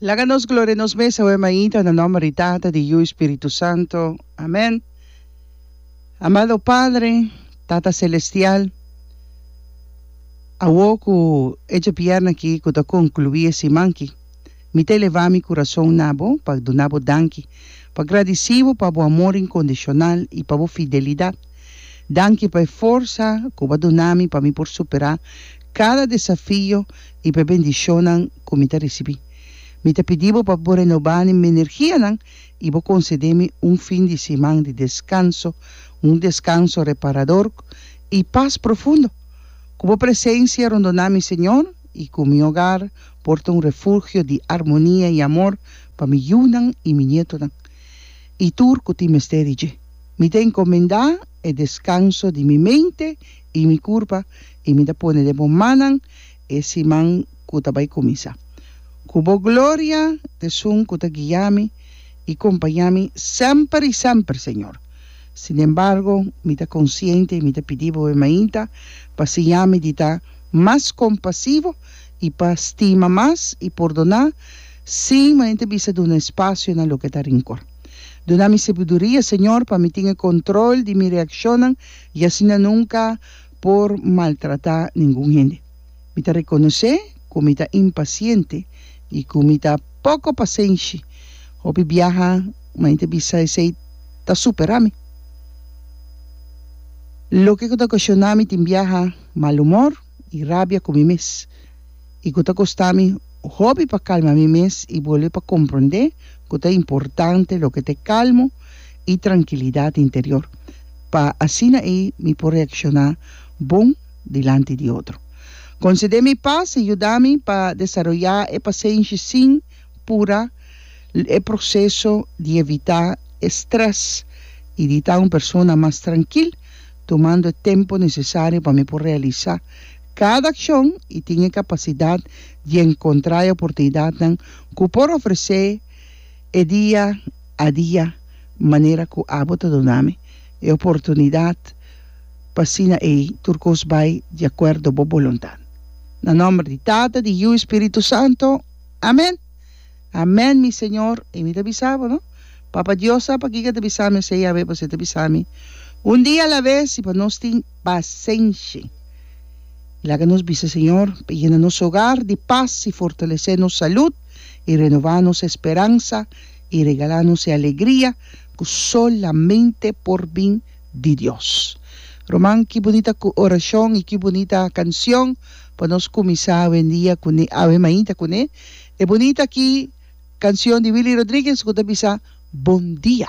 Laga nos gloria nos mes awe mainta na nomber di Tata, di Yu, i Spiritu Santo. Amen. Amado Padre, Tata Celestial, awo ku e djepièrna aki ku ta konkluí e siman ki, mi ta elevá mi kurason na bo pa duna bo danki, pa gradisí bo pa bo amor inkondishonal i pa bo fidelidat. Danki pa e forsa ku bo a duna mi pa mi por superá kada desafio i p'e bendishonnan ku mi ta risibí. Mi ta pidi bo pa bo renobá mi energianan i bo konsedé mi un fin di siman di deskanso, un deskanso reparador i pas profundo. Ku bo presensia rondoná mi, Señor, i ku mi ogar por ta un refugio di armonia i amor pa mi yunan i mi nietonan i tur ku tin mester di dje. Mi ta enkomendá e deskanso di mi mente i mi kurpa i mi ta pone den bo mannan e siman ku ta bai kuminsá. Ku bo gloria t'esun ku ta guia mi i kompañá mi semper i semper, Señor. Sin embargo, mi ta konsiente i mi ta pidi bo e mainta pa siña mi di ta mas kompasivo i pa stima mas i pordoná sin mainta bisa duna espasio na loke ta rinkor. Duna mi sebuduria, Señor, pa mi tin e kontrol di mi reakshonnan i asina nunka por maltrata ningun hende. Mi ta rekonosé ku mi ta impasiente i ku mi ta poko pasenshi. Hopi biaha mi ta bisa esei ta superá mi. Loke ku ta okashoná mi tin biaha malumor i rabia ku mi mes. i ku ta kosta mi hopi pa kalma mi mes i bolbe pa komprondé ku ta importante loke ta e kalmo i trankilidat interior, pa asina ei mi por reakshoná bon dilanti di otro. Konsedé mi pas i yuda mi pa desaroyá e pasenshi sin pura l e proseso di evitá e strès i di ta un persona mas trankil, tumando e tempu nesesario pa mi por realisá Kada akshon i tin e kapasidat di enkontrá e oportunidatnan ku por ofresé e dia a dia manera ku abo ta duna mi e oportunidat pa asina ei tur kos bai di akuerdo bo boluntat. Na nòmber di Tata, di Yiu i Spiritu Santu, amèn! Amèn, mi Señor! I mi ta bisa bo, no? Papa Dios sa pa kiko ta bisa mi, esei a haber pa esei ta bisa mi, un dia a la vez i pa nos tin. pasenshi. I laga nos bisa, Señor, pa yena nos hogar di pas i fortalesé nos salud i renová nos esperansa i regalá nos e alegria ku solamente por bin di Dios. Ruman, ki bunita orashon i ki bunita kansion pa nos kuminsá awendia kuné, awe mainta kuné. E bunita ki kansion di Willy Rodriguez ku ta bisa Bon dia.